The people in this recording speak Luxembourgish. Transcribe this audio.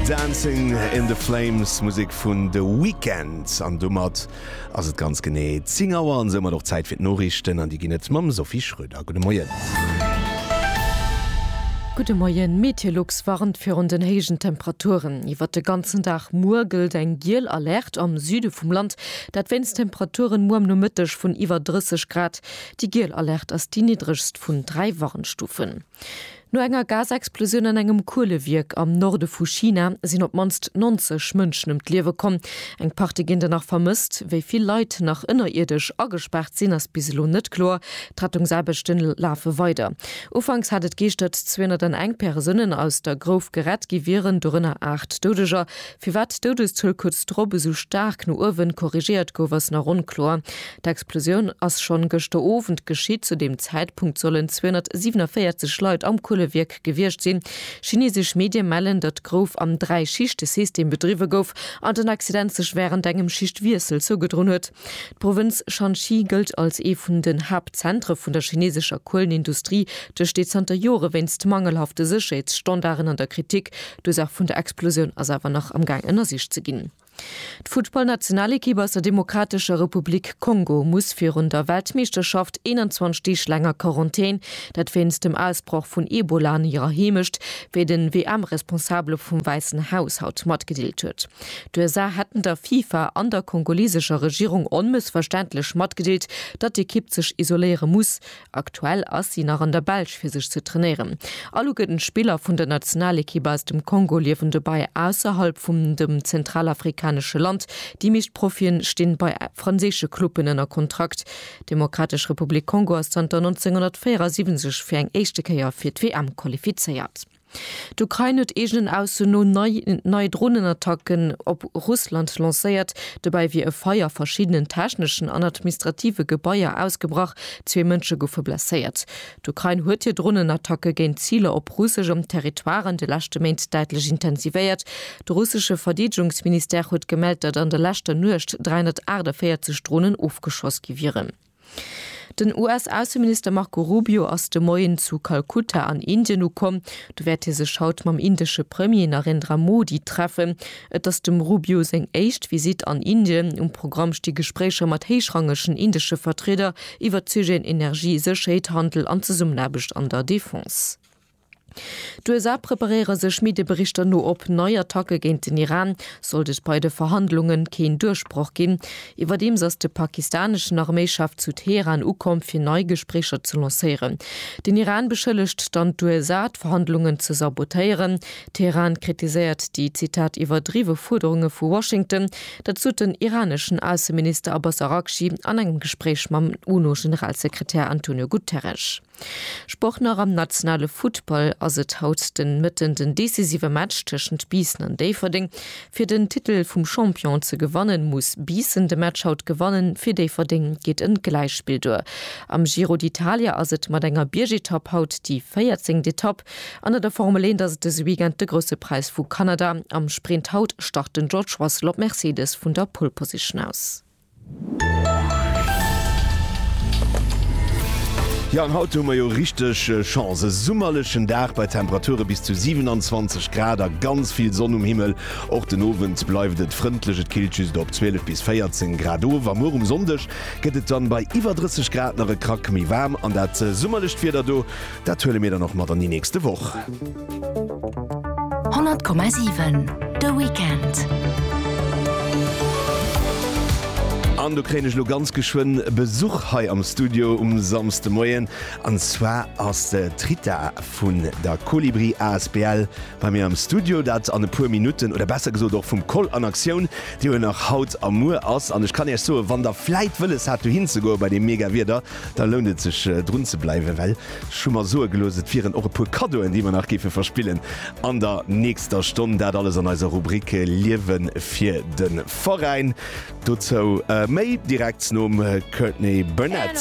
Dancing in the Flames, Musek vun The Weeknd. An domat ass et ganz genee 10 Auer an soumat och Zäit fir d'Noriichten. An déi ginn et mam Sophie Schröder. Gudde Moien. Gudde Moien. Meteolux warnt virun den héijen Temperaturen iwwert de ganzen Dag. Muer gëllt eng giel Alerte am Süde vum Land, dat wéinst Temperaturen muer am Nomëtteg vun iwwer 30 Grad. Déi giel Alerte ass déi niddregst vun dräi Warnstufen. No enger Gasexplosioun an engem Kuelewierk am Norde vu China sinn op d'mannst 90 Mënschen ëm d'Liewe komm. Eng Partie ginn der nach vermësst. Wéi vill Leit nach ënnerierdesch agespaart sinn, ass bis elo net kloer. D'Rettungsaarbechte lafe weider. Ufanks hat et geeschtert, 201 Persounen aus der Grouf gerett gi wieren, dorënner 8 Doudeger. Firwat d'Doudeszuel kuerz drop esou staark no uewen korrigéiert gouf, ass nach onkloer. D'Explosioun ass schonn gëschter Owend geschitt. Zu deem Zäitpunkt sollen 247 Leit am Kuelewierk gewiescht sinn. Chinesesch Medie mellen, datt d'Grouf am Dräi-Schichte-System bedriwwe gouf an den Accident sech wärend engem Schichtwiessel zougedroen huet. D'Provënz Shanxi gëllt als ee vun den Haaptzentre vun der chineesescher Kuelenindustrie. D'Stee zanter Jore wéinst mangelhafte Sécherheetsstandarden an der Kritik. D'Ursaach vun der Explosioun ass awer nach am Gaang ënnersicht ze ginn. D'Futtballnationalekipp aus der Demokratescher Republik Kongo muss virun der Weltmeeschterschaft 21 Deeg laang a Quarantän, dat wéinst dem Ausbroch vun Ebola an hirer Heemecht, wéi den WM-Responsabele vum Wäissen Haus haut matgedeelt huet. D'USA hätten der FIFA an der kongolesescher Regierung onmëssverständlech matgedeelt, datt d'Ekipp sech isoléiere muss, Aktuell ass si nach an der Belsch fir sech ze trainéieren. All ugëten Spiller vun der Nationalekipp aus dem Kongo liewen dobäi ausserhalb vum dem zentralafrikanesche Land. Déi meescht Profien stinn bei franséische Cluben ënner Kontrakt. D'Demokratesch Republik Kongo ass zanter 1974 fir eng éischte Kéier fir d'WM qualifizéiert. D'Ukrain huet eegenen Ausso no nei Dronenattacken op Russland lancéiert. Dobäi wier e Feier a verschiddenen techneschen an administrative Gebaier ausgebrach, zwee Mënsche goufe blesséiert. D'Ukrain huet hir Dronenattacke géint Ziler op russeschem Territoire an de leschte Méint däitlech intensivéiert. De russesche Verdeedegungsministère huet gemellt, datt an der leschter Nuecht 348 Dronen ofgeschoss gi wieren. Den US-Ausseminister Marco Rubio ass de Moien zu Kalkutta an Indien ukomm. Do wäert hie sech haut mam indesche Premier Narendra Modi treffen. Et ass dem Rubio seng éischt Visitt an Indien. Um Programm sti Gespréicher mat héichrangegen indesche Vertrieder iwwert d'Sujeten Energie, Sécherheet, Handel an Zesummenaarbecht an der Defense. D'USA preparéiere sech Medieberichter no op nei Attacke géint den Iran, sollt et bei de Verhandlunge keen Duerchbroch ginn. Iwwerdeems ass de pakistaneschen Arméichef zu Teheran ukomm, fir nei Gespréicher ze lancéieren. Den Iran beschëllegt dann d'USA, d'Verhandlungen ze sabotéieren. Teheran kritiséiert déi, Zitat, iwwerdriwwe Fuerderunge vu Washington. Dat sot den iraneschen Ausseminister Abbas Araghchi an engem Gespréich mam UNO-Generalsekretär Antonio Guterres. Sport Nach am nationale Futtball ass et haut de Mëtten den decisive Match tëschent Biissen an Déifferdeng. Fir den Titel vum Champion ze gewannen, muss Biissen de Match haut gewannen. Fir Déifferdeng geet en Gläichspill duer. Am Giro d'Italia ass et mat enger Biergetapp haut déi 14. Etapp. An an der Formel 1 ass et dëse Weekend de Grousse Präis vu Kanada. Am Sprint haut start den George Russell op Mercedes vun der Pole Position aus. Jo, an haut hu mer jo richteg Chance. E summerlechen Dag bei Temperature bis zu 27 Grad a ganz vill Sonn um Himmel. Och den Owend bleift et frëndlech, et killt just op 12 bis 14 Grad of. A muer um Sonndeg gëtt et dann bei iwwer 30 Grad nach e Krack méi waarm. An dat summerlecht Wieder do Dat huele mir dann och mat an déi nächste Woch. 100,7 De Weekend. An do kréien ech lo ganz geschwënn Besuch hei am Studio um Samsdemoien. An zwar ass d'Rita vun der Colibri asbl bei mir am Studio. Dat an e puer Minutten oder besser gesot och vum Koll an Aktioun, dee jo nach haut a muer ass. An ech kann Iech soen, wann Der vläit wëlles hat dohin ze goe bei deem mega Wieder, Da lount et sech drun ze bleiwen, well ech hu mer soe gelooss, et wieren och e puer Kaddoen, déi mer nach géife verspillen an der nächster Stonn. Dat alles an eiser Rubrik Liewe fir de Veräin. Dozou méi direkt nom Courtney Barnett.